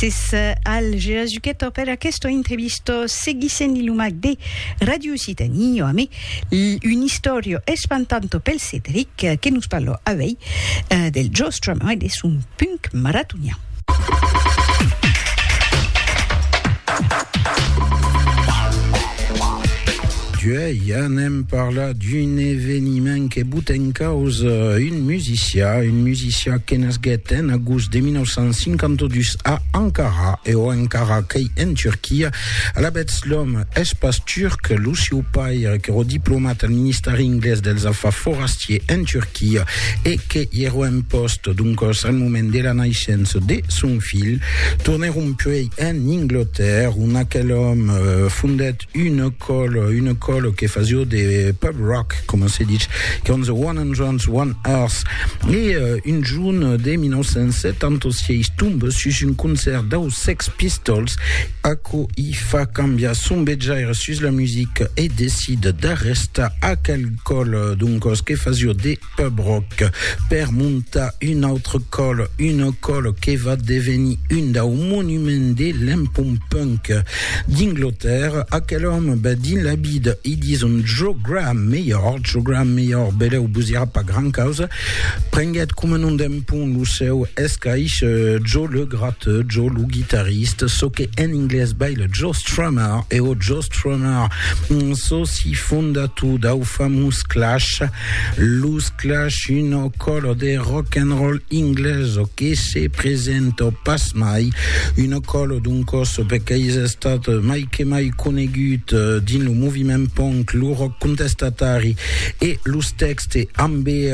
Mrs. Al Gerazuchetto per aquesta entrevista seguissent li lumac de Radio Occitanie jo amé un historio espantanto pel Cédric que nos parlo avei eh, del Joe Strummer e de son punk maratonian. Duei anem parlar d'un eveniment que bota en causa un musicià, un musicià que nasguèt en agost de 1952 a Ankara, e o encara qu'ei en Turquia. Alavetz, l'òme es pas turc, lo sieu paire qu'èro diplomat al Ministèri Inglés dels Afars Forastiers en Turquia e que i èro en pòst, doncòs, al moment de la naishença de son filh, tornèron puèi en Inglotèrra, ont aquel òme fondèt Une còla, une còla que fasió de pub rock, coma se ditz, con The One Hundreds, One Earth. E euh, un junh de 1976 tombe sus un concèrt dau Sex Pistols, aquò i fa cambiar son betjaire sus la musica e decide d'arrestar aquel còla, doncòs, que fasió de. Pub Rock, per montar un autre còl, una còl que va devenir un dau monuments de l'empont punk d'Inglotèrra, aquel òme bèth dins la vida, i dison Jo Graham Mayor, Jo Graham Mayor, belèu vos irà pas gran causa, prenguèt coma nom d'empont lo seu escaish Jo le Gratteux, Jo lo Guitarriste, çò que en inglés baile Jo Strummer, e o Jo Strummer, çò si fondator dau famós Clash, Los Clash, una còla de rock and roll inglesa que se presenta pas mai, una còla doncòs perque's estat mai que mai conegut dins lo moviment punk, lo rock contestatari e los tèxtes ambe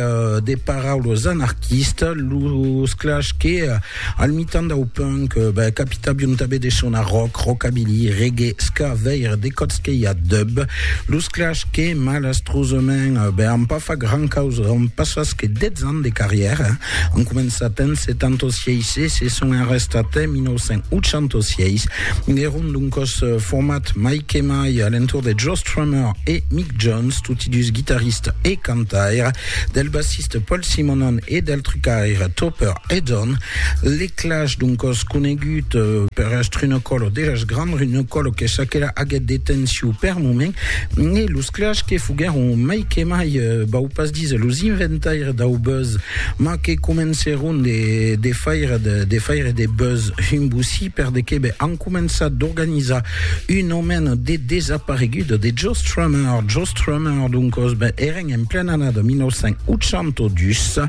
de paraulas anarquistas, los Clash que Al mitan dau punk, bèth capita biontabe de sonar rock, rockabilly, reggae, ska, veire de còps que i a dub. Los Clash que, malastrosament, bèth an pas fach gran causa, an passat que 10 ans de carrièra. An començat en 76 e se son arrestat en 1986. Èron d'un còs format mai que mai a l'entorn de Joe Strummer e Mick Jones, toti dus guitaristes e cantaires, del bassiste Paul Simonon e del trucaire Topper Edon, l'eclage d'un còs conegut per Astrunocòl o dejas grand Runocòl que çaquelà aguèt detenció per moment e los clash que foguèron mai que mai, vau pas díser los inventaires dau buzz, mas que comencèron de faire de faire de buzz un bocí per de que be an començat d'organizar un omèn de desaparegut de Joe Strummer. Joe Strummer, d'un còs, ben èren en plena annada 1982,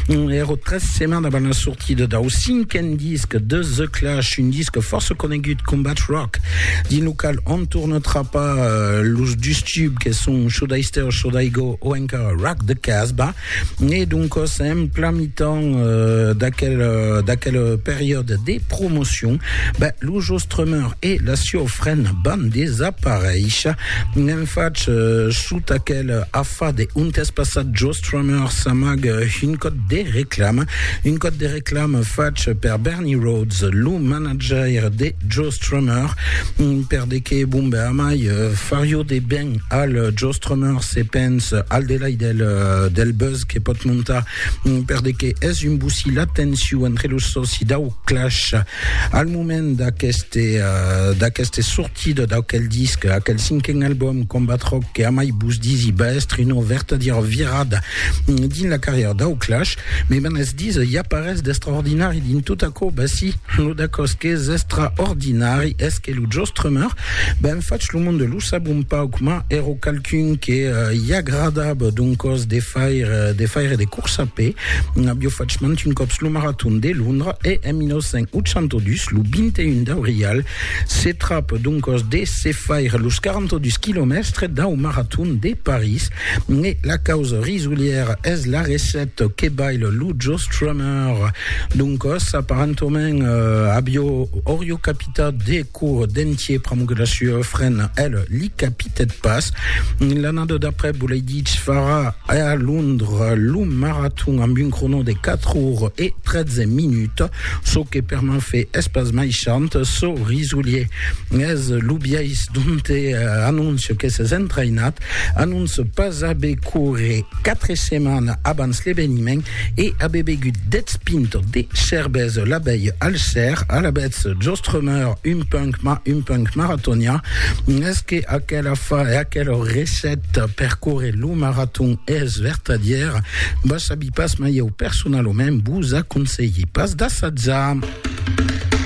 Ero tres setmanes avant la sortida dau cinquen disc de The Clash, un disc fòrça conegut, Combat Rock, dins lo qual on torna trapar los dus tubs que son Should I Stay or Should I Go o encara Rock the Casbah. E doncòs en plan mitan d'aquel, d'aquel periòd de promocion, ben, lo Joe Strummer e la sieu frena van desaparéisher. N'en fach sota aquel Fa de un tèsp passat, Joe Strummer s'amaga un còd de reclama, un còd de reclama fach per Bernie Rhodes, lo manajaire de Joe Strummer, per de que bomba amai farió de ben al Joe Strummer se pens al delai del, del buzz que pòt montar, per de que es un bocí la tensiu entre los sòci dau Clash al moment d'aqueste, d'aqueste sortida. Tido d'aquel disc, aquel cinquen album Combat Rock que amai vos disi va èstre una vertadièra virada dins la carrièra dau Clash, me van es disa i a parés d'estraordinari dins tot aquò, ben si, lo d'aquò's qu'es estraordinari es que lo Joss Strummer, ben fach lo monde lo sab un pauc, mas èra qualqu'un que i agradava d'un còs de faire de faire de course a pè, aviá fach mantun còps lo maraton de Londra e en 1982, lo 21 d'aurial, Se trap doncos de se faire los 42 quilomèstres dau Marathon de París e la causa risolièra es la recette que baile lo Joe Strummer. Doncos, aparentament, avió orió capitat de cour d'entier pr'amor que la sua frena, el, li capitèt pas. L'annada d'après, Buleiditsch farà a Londres lo Marathon amb un crono de 4 ores e 13 minuts. Çò que per m'en fait es pas mai chant, çò risolier, es lo biais donte anoncio que s'es entraïnat, anonce pas aver corre quatre setmanes abans l'eveniment e aver begut dètz pintes de cervesa la veilh al ser, alavetz jostremeur un punk ma un punk maratonien, es que aquela fa e aquela recèta per corre lo maraton es vertadièra? Vas saber. Pas mai eu personalament vos aconselhi pas d'assajar.